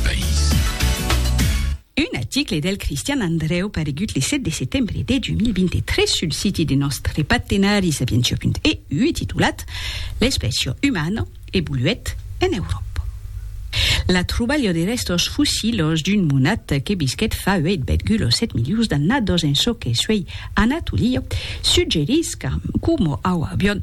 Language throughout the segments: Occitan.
país. Un aticle del Cristian Andreu paregut le 7 de setembre de 2023 sul siti de nòstre partenari Sapientia.eu titulat L'espècia umana evoluèt en Euròpa. La trobalha de rèstos fossilhos d'un monat que visquèt fa 8,7 milions d'annadas en çò que suèi Anatolia suggerís qu'un Homo auavion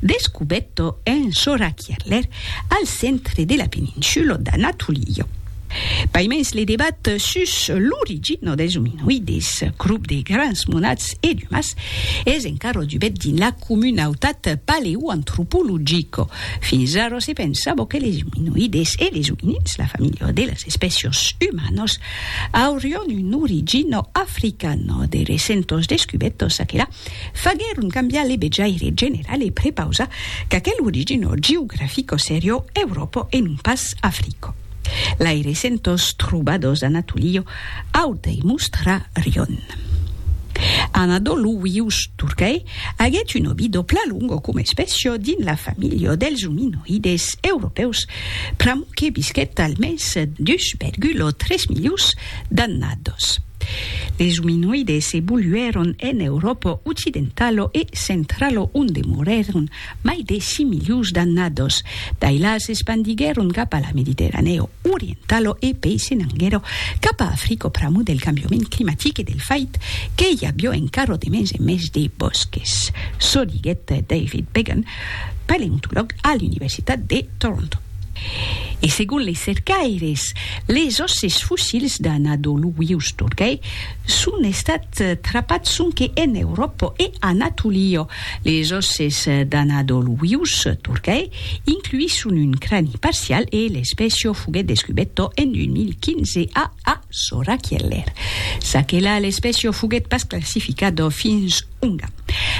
Descubetto en Sorakierler, al centre de la peninsulo d'Anatolio. Paimens le debat sus l'origina dels ominoides, crop de grans monats e d'umas, es encara dubet dins la comunautat paleoantropologica. Fins ara se pensava que les ominoides e les ominins, la familha de las espècias umanas, aurián una origina africana. De recentas descubetas, aquela faguèron cambiar le bejaire general e prepausar qu'aquel origino geografico serio Europo e non pas Africo. Lai recentors trobadors d'Anatolio Auta e Mustra Rion. Anadolu Vius Turcae aguèt un obido plan longo coma espècio dins la familha dels ominoides europèus pr'amor que visquèt almens 2,3 milions d'annados. Les ominoides evoluèron en Euròpa occidentalo e centralo onde morèron mai de 6 milions d'annados. D'ailà s'espandiguèron cap a la Mediterranèo orientalo e pei se n'anguèro cap a Africo pr'amor del cambiament climatic e del fait que i avió encara de mens en mens de bòsques, çò diguèt David Began, paleontològ a l'Universitat de Toronto. E segon les cercaires, les òsses fossils d'Anadoluius Turgay son estats trapats sonque en Euròpa e Anatolia. Les òsses d'Anadoluius Turgay incluisson un crani parcial e l'espècia foguèt descubèta en 2015 a Asorakieler. Ça que la, l'espècia foguèt pas classificada fins Unga.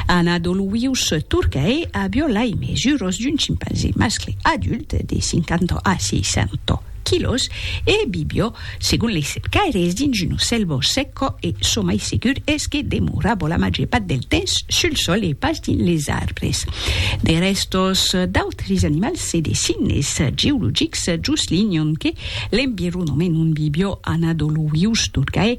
Ana Doluius Turcae a violai mesuras d'un chimpanzé mascle adult de 50 a 60 quilòs e vivió, segon lei cercaires, dins una sèlva sèca e çò mai segur es que demorava la màger part del temps sul sòl e pas dins les arbres. De rèstos d'autres animals e de signes geologics juslinhan que l'environament ont vivió Ana Doluius Turcae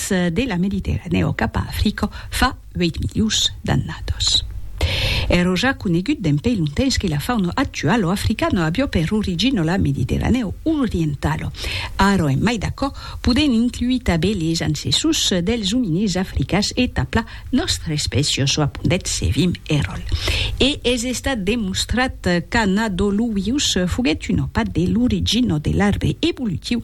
Las de la Mediterranèa o cap a Africa fa 8 milions d'annadas. Èro ja conegut d'en pei lontens que la fauna actuala africana avió per origina la Mediterranèa orientala. Ara en mai d'aquò, podèm incluir tabé les ancessors dels ominís africans e tapla nòstra espècia çò apondèt Sevim Erol. E es estat demostrat qu'Anadoluius foguèt un opat de l'origina de l'arbre evolutiu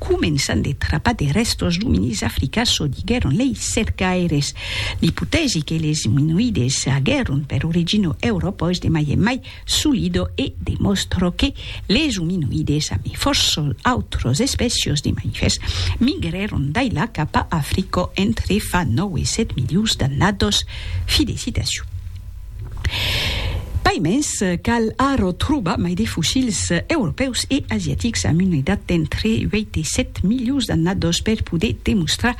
Començant de trapar de rèstos d'ominís africans, çò diguèron lei cercaires. L'ipotèsi que les iminoïdes aguèron per origina Euròpa es de mai en mai solida e demòstra que les ominoïdes, amé fòrça autras espècias de mamifèrs, migrèron d'ailà cap a Africa entre fa 9 e 7 milions d'annadas. Fi de citacion. Pas mens, cal arro trobar mai de fossils europèus e asiatics amb una edat d'entre 8 e 7 milions d'annados per poder demostrar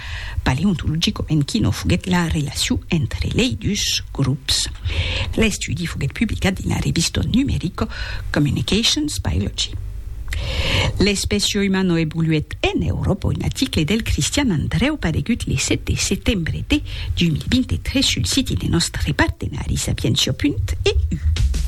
paleontologicament quina foguèt la relacion entre lei dus grops. L'estudi foguèt publicat dins la revista numerica Communications Biology. L'espècia humana evoluèt en Euròpa, un article del Cristian Andrèu paregut le 7 de setembre de D'un 23 sul siti de nòstre partenari Sapientia. E. U.